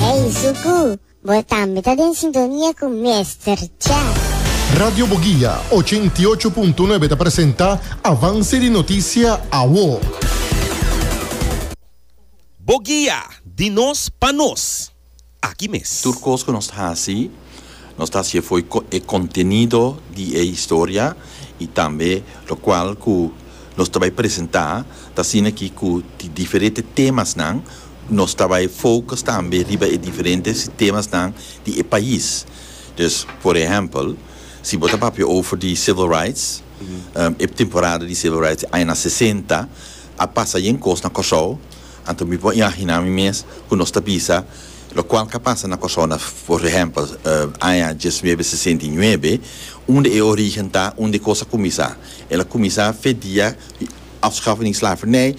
Ey Zuku, bo tambe ta den sintonia cu Mester Chef. Radio Boguia ochenta i ocho punto nuebe ta presenta Avance di Noticia Awo. Boguia, di nos pa nos. Aki mes. Tur cos cu nos ta haci, nos ta haci'e fo'i cu e contenido di e historia y tambe locual cu nos ta bay presenta ta asina aki cu di diferete temasnan. Nos ta bai focus tambe riba e diferente sistemasnan di e pais. Dus, por ehempel, si bo ta papia over di civil rights, e temporada di civil rights di añana sesenta a pasa yen cos na Kòrsou, anto mi por imaginá mi mes cu nos ta bisa locual ca pasa na Kòrsou na, por ehempel, aña diesnuebe sesenta i nuebe, unda e origen ta, unda e cos a cuminsa. El a cuminsa fe dia. Afschaffen di slavernij,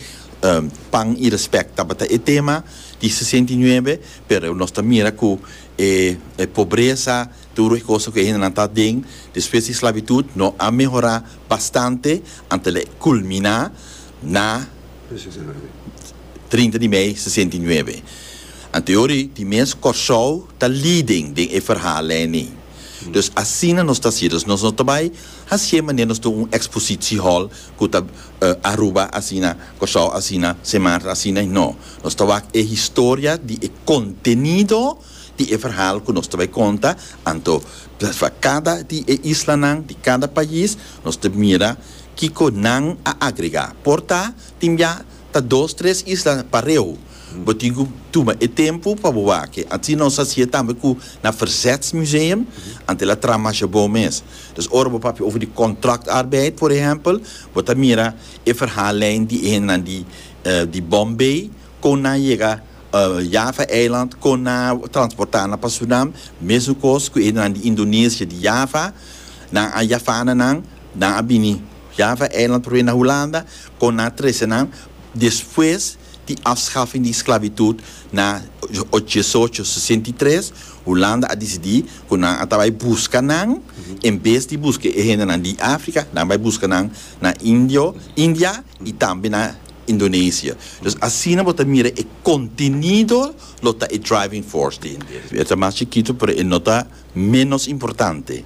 pan i respect tabata e tema di sesenta i nuebe, pero nos ta mira cu e pobreza, tur e cosa cu e hendenan ta aden despues di sclavitud no a mehora bastante anto e culmina na trinta di mei sesenta i nuebe. Anto yori di mes Corsou ta leading den e verhal eni. Dus asina nos ta haci, dus nos no ta bay haci'e manera nos tin un expositiehal, ku ta Aruba asina, Kòrsou asina, Sint Maarten asina i no. Nos ta wak e historia di e kontenido di e verhal ku nos ta bai konta, anto pa kada di e islanan, di kada pais, nos ta mira kiko nan a agregá. Por ta tin bia ta dos tres isla pareu. Bo tin ku tuma e tempu pa bo wak e. Asina nos hasié tambe ku na Verzetsmuseum, anto el a traha masha bon mes. Dus ora bo papia over di contractarbeid, por ehempel, bo ta mira e verhaallijn di e hendenan di di Bombay, kon nan yega Java Eiland, kon nan a transporta nan pa Surinam, mesukos ku e hendenan di Indonesia, di Java, nan a Javana nan, nan a bini Java Eiland probe na Hulanda, kon nan a trese nan, despues. di afschafing di sclavitud na diesocho sesenta i tres, Hulanda a dicidi cu nan a ta bay busca nan, en bes di busca e hendenan di Africa, nan bay busca nan na Indio, India y tambe na Indonesia. Dus asina bo ta mira e contenido lo ta e driving force di hende. E ta mas chikito pero e no ta menos importante.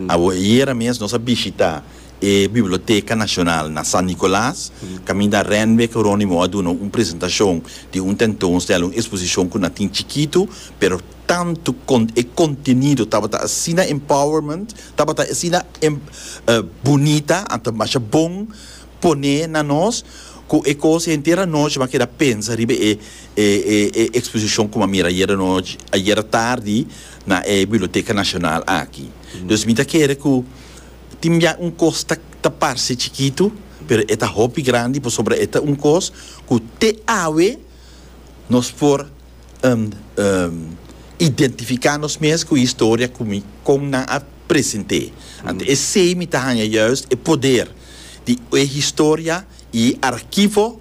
Awo, ayera mes nos a bishita E Biblioteka Nashonal na San Nicolas, caminda Renwick Ronimo a duna un presentacion di un tentoonstelling, un exposicion cu na tin chikitu, pero tantu con e contenido tabata asina empowerment, tabata asina bunita, a masha bon pone na nos, cu e cos henter anochi m'a keda pensa riba e e exposicion cu m'a mira ayer anochi, ayer tardi na e Biblioteka Nashonal aki. Dus mi ta kere cu. Tin bia un kos ta ta parse chikitu, pero e ta hopi grandi pasobra e ta un kos ku te awe nos por identifiká nos mes ku historia ku mi kon nan a present'é. Anto esei mi ta haña yùist e poder di e historia i e arkivo.